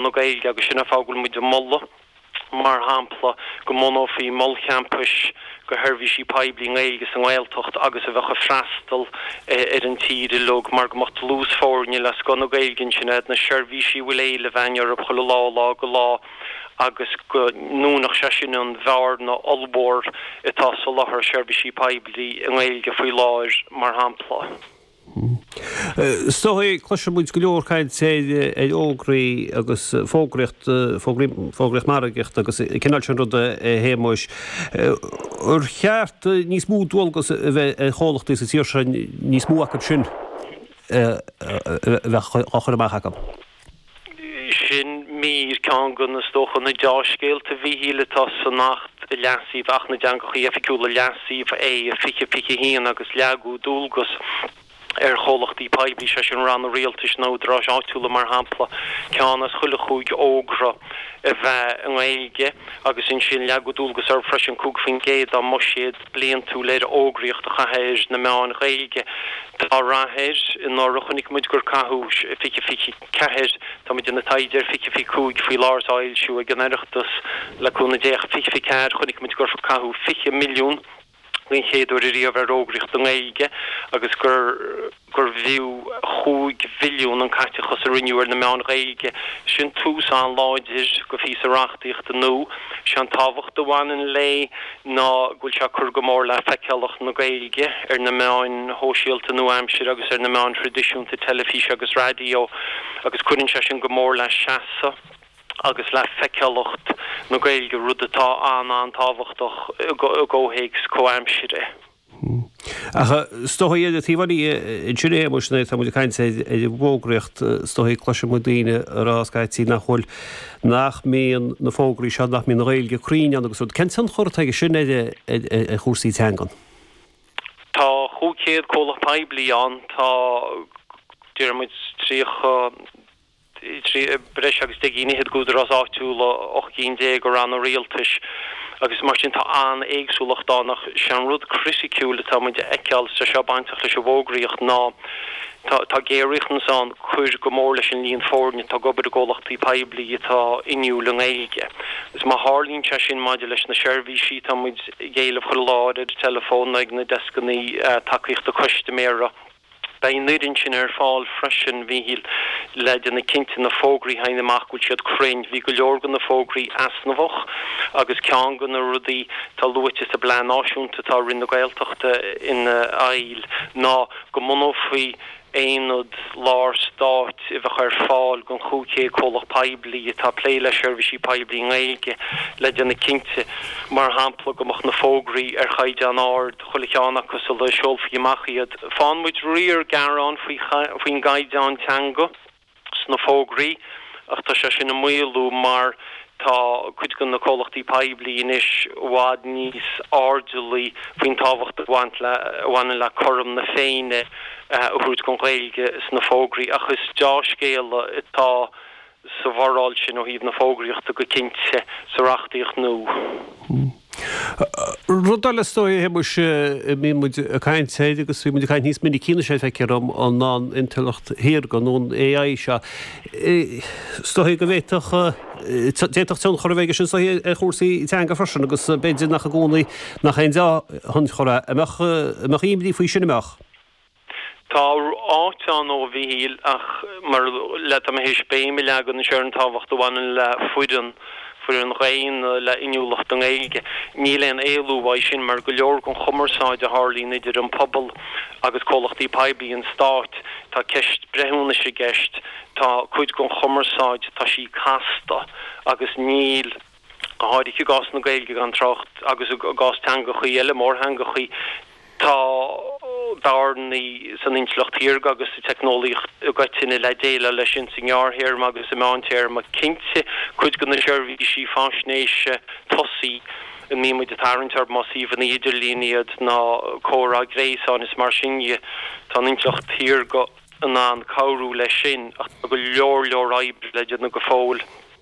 na Gaeilge agus sin an fáth go bhfuil muid ag moladh mar shampla go mbunófaí mol champais go sheirbhísí poiblí i nGaeilge sa nGaeltacht agus a bheadh ag freastal ar an tír uilig mar go mbeadh dlús foirne le scoth na Gaeilge ansin ar fad na seirbhísí a bhfuil éileamh againn orthu chuile lá ó lá go lá agus go ndúnfadh sé sin an bhearna ollmhór atá sa soláthar seirbhísí poiblí i nGaeilge faoi láthair mar shampla. Is dócha, cloiseann muid go leor caint ar fhógraí agus fógraíocht, fógraí, fógraíocht margaíochta agus an cineál sin ruda a Shéamuis. Ar cheart níos mó dualgas a bheith ar chomhlachtaí sa tír seo, níos mó acu sin a bheith á chur amach acu? Sin mír, ceann de, is dócha, na deá-scéalta a Mhichíl atá san Acht leasaithe Acht na dTeangachaí Oifigiúla, Leasú, 20, 21 agus leagadh dualgas ar chomhlachtaí poiblí, sé sin Ranna Rialtais nó Údaráis Áitiúla mar shampla, ceann as chuile chúig fhógra a bheith i nGaeilge agus ansin leagadh dualgas orthu freisin 5% dá mbuiséad bliantúil ar fhógraíocht a chaitheamh ar na meáin Ghaeilge. Tá rath air. Anuraidh chonaic muid gur caitheadh 20, 24, tá muid i mbun taighde ar 20, 25 faoi láthair, atá á fhoilsiú ag an Oireachtas, le cúnamh Dé, ach 20, 24, chonaic muid gur caitheadh 20 milliún den chéad uair riamh ar fhógraíocht i nGaeilge agus gur. gur fiú chúig mhilliún an caiteachas a rinneadh ar na meáin Ghaeilge. Sin tús an-láidir go phíosa reachtaíochta nua. Sé an tábhacht a bhaineann léi ná go bhfuil sé ag cur go mór le feiceálacht na Gaeilge ar na meáin shóisialta nua-aimseartha agus ar na meáin thraidisiúnta teilifíse agus raidió agus cuireann sé sin go mór le seasamh agus le feiceálacht na Gaeilge, rud atá an-an-tábhachtach i gcomhthéacs comhaimseartha. Ach is dócha ar an taobh eile ansin a Shéamuis, nuair atá muid ag caint ar an bhfógraíocht, is dócha cloiseann muid daoine ag rá scaití nach bhfuil, nach mbíonn na fógraí seo, nach mbíonn an Ghaeilge cruinn ann agus rud. Cén tionchar atá aige sin ar chúrsaí teangan? Tá cúig chéad comhlacht poiblí ann, tá, deir muid, tríocha, trí breis agus deich gcinn fhichead d'údaráis áitiúla, ocht gcinn déag de ranna rialtais, agus mar sin tá an-éagsúlacht ann. Ach is é an rud criticiúil atá muid a fheiceáil, is tá sé seo bainteach leis an bhfógraíocht, ná tá géar-riachtanas ann cur go mór leis an líon foirne atá ag obair i gcomhlachtaí poiblí atá inniúil i nGaeilge. Agus má tharlaíonn sé sin maidir leis na seirbhísí, tá muid ag éileamh chuile lá ar ar an teileafón nó ag na deskanna tacaíochta custaiméara, Beidh an fhoireann sin ar fáil freisin a Mhichíl le déanamh cinnte na fógraí a théann amach go bhfuil siad cruinn. Bhí go leor de na fógraí easnamhach agus ceann de na rudaí atá luaite sa bplean náisiúnta atá Roinn na Gaeltachta ina fheighil ná go mbunófaí aonad lár stáit a bheadh ar fáil don chúig chéad comhlacht poiblí atá ag plé le seirbhísí poiblí i nGaeilge le déanamh cinnte mar shampla go mbeadh na fógraí ar chaighdeán ard. chuile cheann acu sula seolfaí amach iad. Faigheann muid riar gearán faoin gcaighdeán teanga sna fógraí ach tá sé sin ag maolú mar tá cuid de na comhlachtaí poiblí anois i bhfad níos airdeallaí faoin tábhacht a bhaineann le cothrom na Féinne a thabhairt don Ghaeilge sna fógraí ach is deá-scéala atá sa bhforáil sin ó thaobh na fógraíochta go cinnte sa reachtaíocht nua. Hm. Rud eile is dóigh, a Shéamais, a mbíonn muid ag caint air agus bíonn muid ag caint níos minicí anois air feictear dhom an an intleacht shaorga nó an AI seo. Is dóigh go bhféadfadh, d'fhéadfadh tionchar a bheith aige sin is dóigh ar chúrsaí teanga freisin agus b'fhéidir nach i gcónaí nach aon deá-thionchar é. An mbeadh, an mbeadh imní faoi sin, an mbeadh? Tá áit ann dó a Mhichíl ach mar le táim théis béim a leagan anois ar an tábhacht a bhaineann le foireann, foireann dhaonna le inniúlacht i nGaeilge. Níl aon éalú uaidh sin mar go leor den chumarsáid a tharlaíonn idir an pobal agus comhlachtaí poiblí, an stát, tá ceist breithiúnais i gceist, tá cuid den chumarsáid, tá sí casta agus níl. go háirithe i gcás na Gaeilge, gan trácht agus i gcás teangachaí eile, mórtheangachaí, tá bearnaí san intleacht shaorga agus sa teicneolaíocht i gcoitinne le déileáil leis sin sa ngearrthéarma agus sa meántéarma. Cinnte, cuid de na seirbhísí faisnéise tosaigh a mbíonn muid ag tarraingt orthu, más suíomhanna idirlín iad nó comhrá gréasáin is mar sin dhe, tá an intleacht shaorga in ann cabhrú leis sin, ach tá go leor leor oibre le déanamh go fóill.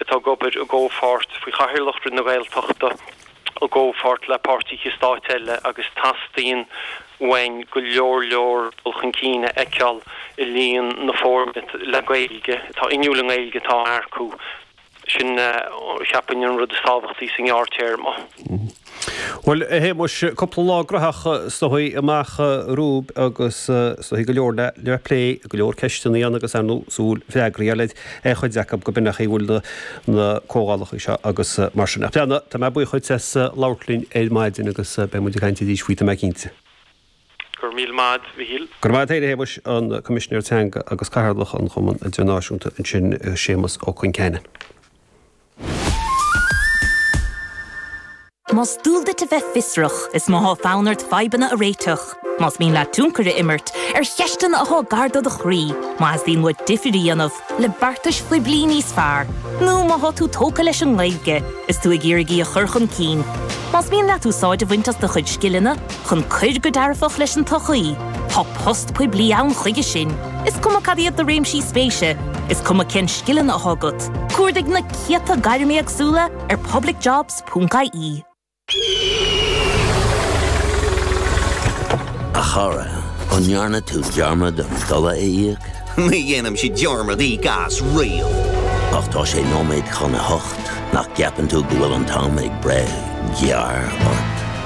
atá ag obair i gcomhpháirt faoi chathaoirleacht Roinn na Gaeltachta i gcomhpháirt le páirtithe stáit eile agus teastaíonn uainn go leor leor dul chun cinn a fheiceáil i líon na foirne le Gaeilge atá inniúil i nGaeilge atá á earcú. Sin, cheapfainn, an rud is tábhachtaí sa ngearrthéarma. Bhuel, a Shéamais, cúpla lá graitheach is dóigh amach romhaibh agus is dóigh go leor le plé, go leor ceisteanna ann agus, ar ndóigh, súil freagraí a fháil ar chuid acu gurb in é an chaoi a bhfuil na comhdhálacha seo agus mar sin. Ach pleanna, tá mé buíoch duit as labhairt linn ar maidin agus beidh muid ag caint arís faoi, tá mé cinnte. Go raibh míle maith a'd, a Mhichíl. Go raibh maith a'd, a Shéamais, an Coimisinéir Teanga agus Cathaoirleach an Chumann Idirnáisiúnta ansin, Séamas Ó Concheanainn. Más dual duit a bheith fiosrach, is má thá fonn ort fadhbanna a réiteach, más mian leat tionchar a imirt ar cheisteanna athá gar do do chroí, má theastaíonn uait difir a dhéanamh le beartais phoiblí níos fearr, nó má thá tú tógtha leis an nGaeilge is tú ag iarraidh í a chur chun cinn, más mian leat úsáid a bhaint as do chuid scileanna, chun cur go dearfach leis an tsochaí, tá post poiblí ann chuige sin, is cuma cad iad do réimsí spéise, is cuma cén scileanna atá agat, cuardaigh na céadta gairm éagsúla ar publicjobs.ie. A chara, an ndearna tú dearmad an dola a íoc? Ní dhéanaimse dearmad íoc as riamh. Ach tá sé nóiméad chun a hocht, nach gceapann tú go bhfuil an t-am ag breith gearr ort?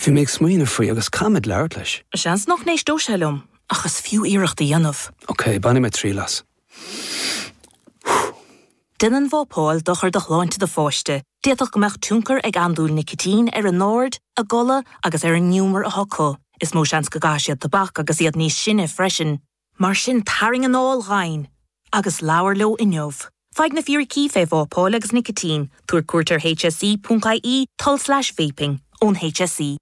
Bhí mé ag smaoineamh faoi agus caithfidh mé labhairt leis. Seans nach n-éisteodh sé liom ach is fiú iarracht a dhéanamh. Ok, bainfidh mé triail as. Déanann vapáil dochar do shláinte do pháiste, d'fhéadfadh go mbeadh tionchar ag andúil nicitín ar a n-aird, a gcodladh agus ar an ngiúmar atá acu. Is mó seans go gcaithfidh siad tobac agus iad níos sine freisin. Mar sin tarraing anáil dhomhain agus labhair leo inniu. Faigh na fíricí fé vapáil agus nicitín, tabhair cuairt ar hse.ie tulslais vaping, ón hse.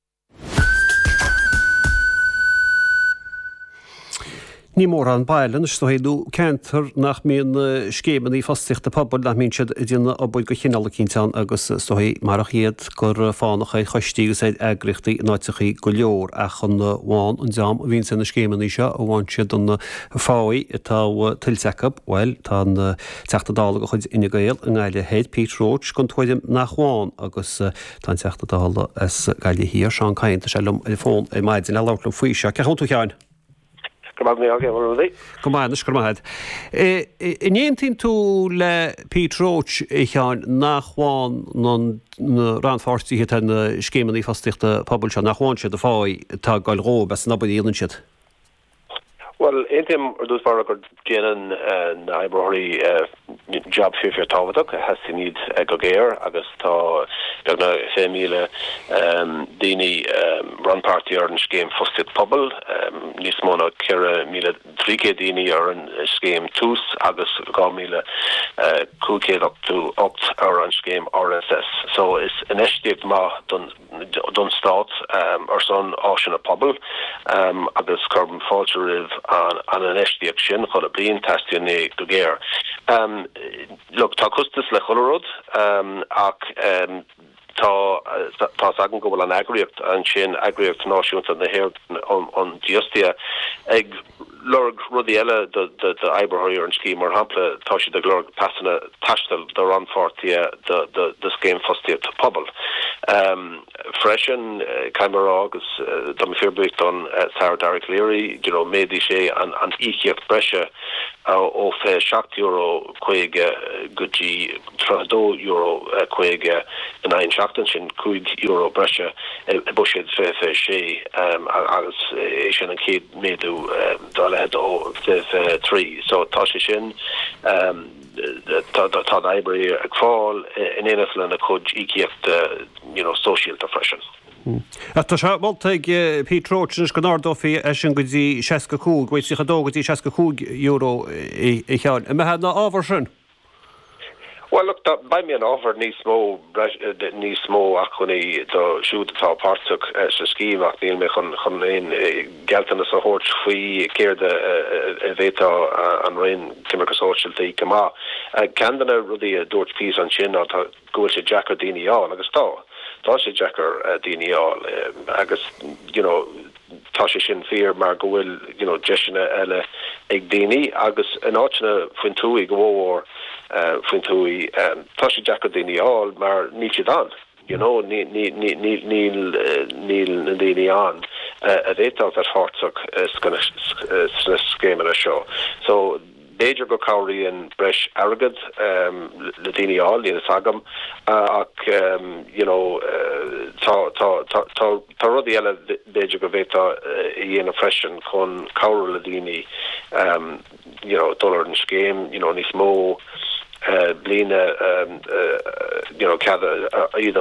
Ní mórán baile ar ndóigh nó ceantar nach mbíonn scéimeanna fostaíochta pobail nach mbíonn siad ag déanamh obair de chineál eicínt ann agus is dóigh marach iad gur fánach ar choistí agus ar eagraíochtaí in áiteachaí go leor ach an bhfaigheann an dream a bhíonns ar na scéimeannaí seo an bhfaigheann siad an pháigh atá tuillte acu, bhuel tá an Teachta Dála de chuid Fhine Gael i nGaillimh thoir, Pete Roche, den tuairim nach bhfaigheann agus tá an Teachta Dála as Gaillimh Thiar, Seán Kyne, tá sé liom ar an bhfón ar maidin, a labhairt liom faoi seo. Cén chaoi a bhfuil tú a Sheáin? Go raibh maith agat, Rudy. Go maith, anois go raibh maith agat. Eh, an aontaíonn tú le Pete Roche, a Sheáin, nach bhfághann na na rannpháirtithe atá ar na scéimeanna fostaíochta pobail seo, nach bhfághann siad an pháigh atá ag gabháil dhóibh, as ucht an obair a dhéanann siad? Bhuel, aontaím ar dtús báire gur Déanann na hoibritheoirí jab fíor-fíor tábhachtach teastaíonn iad go géar agus tá beagnach 20,000 daoine rannpáirteach ar an scéim fostaíocht phobail, níos mó ná 4,300 daoine ar an scéim tús agus 2,588 ar an scéim RSS so is infheistíocht maith don don Stát ar son áiseanna pobail agus cuirim fáilte roimh an infheistíocht sin chuile bliain. Teastaíonn é go géar. Tá costas le chuile rud ach tá's agam go bhfuil an eagraíocht ansin, Eagraíocht Náisiúnta na hÉireann um Dífhostaithe, ag. lorg rudaí eile d'oibritheoirí ar an scéim, mar shampla tá siad ag lorg pasanna taistil do rannpháirtithe do Scéim Fostaíochta Pobail freisin. Caithfidh mé a rá, agus tá mé fíor buíoch don Aire Dara Calleary, you know méadaigh sé an íocaíocht breise ó €27 50 go dtí €32 50 in aghaidh an seachtain, sin €5 breise i mbuiséad 2026 agus é sin an chéad. méadú dá leithéid ó fiche trí so tá sé sin tá tá an oibrí ag fáil in éineacht lena chuid íocaíochta you know sóisialta freisin. Ach tá sé molta ag Pete Roche anois go n-ardófaí é sin go dtí seasca a cúig, bhuel tríocha a dó go dtí seasca a cúig euro, a Sheáin. An mbeifeá i bhfabhar sin? Bhuel, look, beidh mé i bhfabhar níos mó, níos mó acmhainní do siúd atá páirteach sa scéim ach níl mé chun, chun aon gealltanas a thabhairt faoi céard a bhféadfadh an Roinn Coimirce Sóisialta go maith. Ceann de na rudaí a dúirt Pete ansin ná go bhfuil sé deacair daoine a fháil agus tá, tá sé deacair daoine a fháil agus, you know, Tá sé sin fíor mar go bhfuil you know deiseanna eile ag daoine agus in áiteanna faoin tuaith, go mhórmhór faoin tuaith, tá sé deacair daoine a fháil mar níl siad ann. You know níl na daoine ann a bhféadfadh a bheith páirteach sna scéimeanna seo. So. B'fhéidir go cabhraíonn breis airgead le daoine a fháil, níl fhios agam ach you know tá tá tá tá tá rudaí eile b'fhéidir go bhféadfá a dhéanamh freisin chun cabhrú le daoine you know dul ar an scéim you know níos mó blianta you know cead iad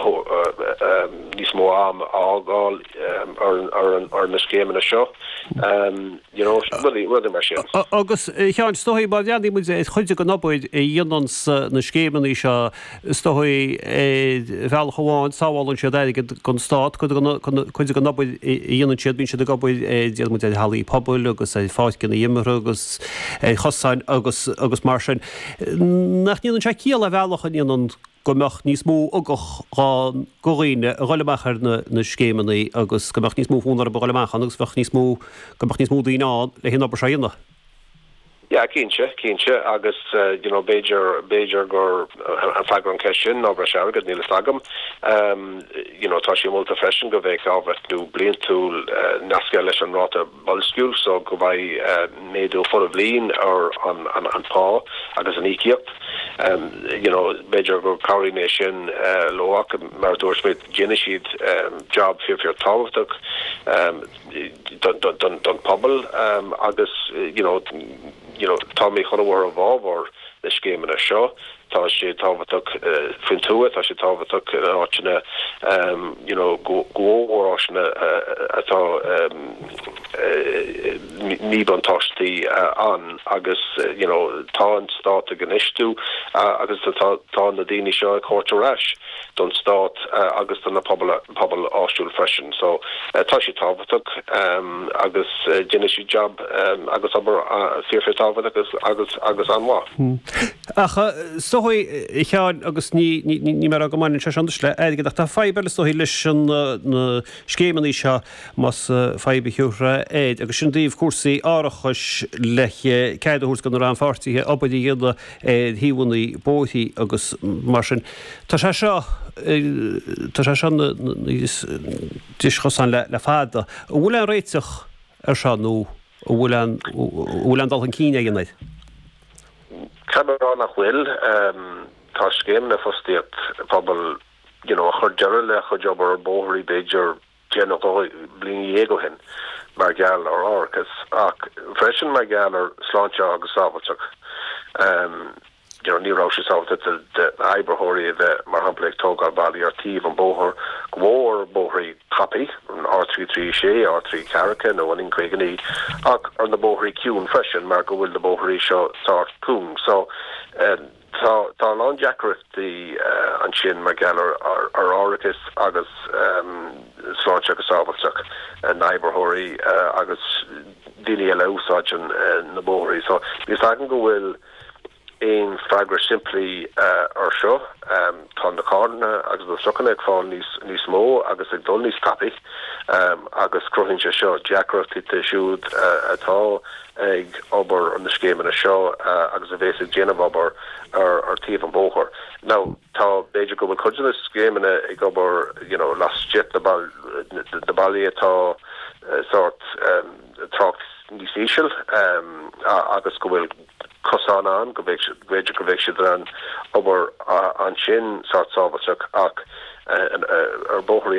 níos mó am a fhágáil ar an ar na scéimeanna seo. you know, rudaí mar sin. Agus, a Sheáin, is dóigh má bhreathnaíonn muid ar chuid den obair a dhéananns na scéimeannaí seo, is dóigh, ar bhealach amháin sábhálann siad airgead don Stát, cuid den obair a dhéanann siad bíonn siad ag obair ar, déarfaidh muid, ar hallaí pobail agus ar pháirceanna imeartha agus ar chosáin agus mar sin. Nach ndéanann sé ciall ar bhealach a Sheáin? go mbeadh níos mó ugach ann go dhaoine a ghoil amach ar na scéimeanna agus go mbeadh níos mó fonn orthu a ghoil amach ann agus bheadh níos mó, go mbeadh níos mó daoine ann leis an obair seo a dhéanamh. Yeah, cinnte, cinnte agus you know b'fhéidir, b'fhéidir gurb é freagra an ceist sin ná breis airgead, níl fhios agam. You know tá sé molta freisin go bheidh athbhreithniú bliantúil nasctha leis an ráta boilsciú so go mbeidh méadú chuile bhliain ar an phá agus an íocaíocht you know b'fhéidir go cabhraí é sin leo ach mar a dúirt mé déanann siad job fíor fíor tábhachtach don don pobal agus you know you know tá mé chun a bheith i bhfabhar na scéimeanna seo. Tá sé tábhachtach faoin tuath, tá sé tábhachtach in áiteanna you know go mhór, áiteanna atá míbhuntáistí ann agus you know tá an stát ag infheistiú agus tá na daoine seo ag tabhairt ar ais don stát agus do na pobal, pobal áitiúil freisin. So tá sé tábhachtach agus déanann siad jab agus obair fíor fíor tábhachtach agus, agus, agus an-mhaith. Ach is dóigh a Sheáin agus níl mé ag rá go mbaineann sé seo anois le airgead ach tá fadhb eile is dóigh leis na scéimeannaí seo más fadhb a thabharfá air agus sin i dtaobh cúrsaí árachais le cead a thabhairt do na rannpháirtithe obair a dhéanamh ar thaobhannaí bóithrí agus mar sin. Tá sé seo tá sé seo ina dhris chosáin le le fada. An bhfuil aon réiteach ar seo nó an bhfuil aon an bhfuil aon dul chun cinn eicínt air? Caithfidh mé a rá nach bhfuil. Tá scéimeanna fostaíocht phobail you know chuir deireadh le chuid obair ar bóithrí b'fhéidir deich nó dhó bliana déag ó shin mar gheall ar árachas ach freisin mar gheall ar sláinte agus sábháilteacht you know ní raibh sé sábháilte d'oibritheoirí a bheith mar shampla ag tógáil ballaí ar taobh an bóthar go mór mór bóithrí tapaidh, R336, R3 ceathracha nó an N59, ach ar na bóithrí ciúin freisin mar go bhfuil na bóithrí seo sách cúng so tá tá a lán deacrachtaí ansin mar gheall ar árachas agus sláinte agus sábháilteacht na oibritheoirí agus daoine eile a úsáideann na bóithrí so níl a fhios agam go bhfuil aon freagra simplí ar seo? Tá na carranna agus na trucanna ag fáil níos mó agus ag dul níos tapaidh agus cruthaíonn sé seo deacrachtaí do siúd atá ag obair ar na scéimeanna seo agus a bhéas ag déanamh obair ar taobh an bhóthair. Now tá, b'fhéidir go bhfuil cuid de na scéimeanna ag obair you know laistigh de na bailte atá sort trácht níos íseal agus go bhfuil, cosán ann go bhféadfadh, b'fhéidir go mbeidh siad in ann obair ansin, sort sábháilte ach ar bóthar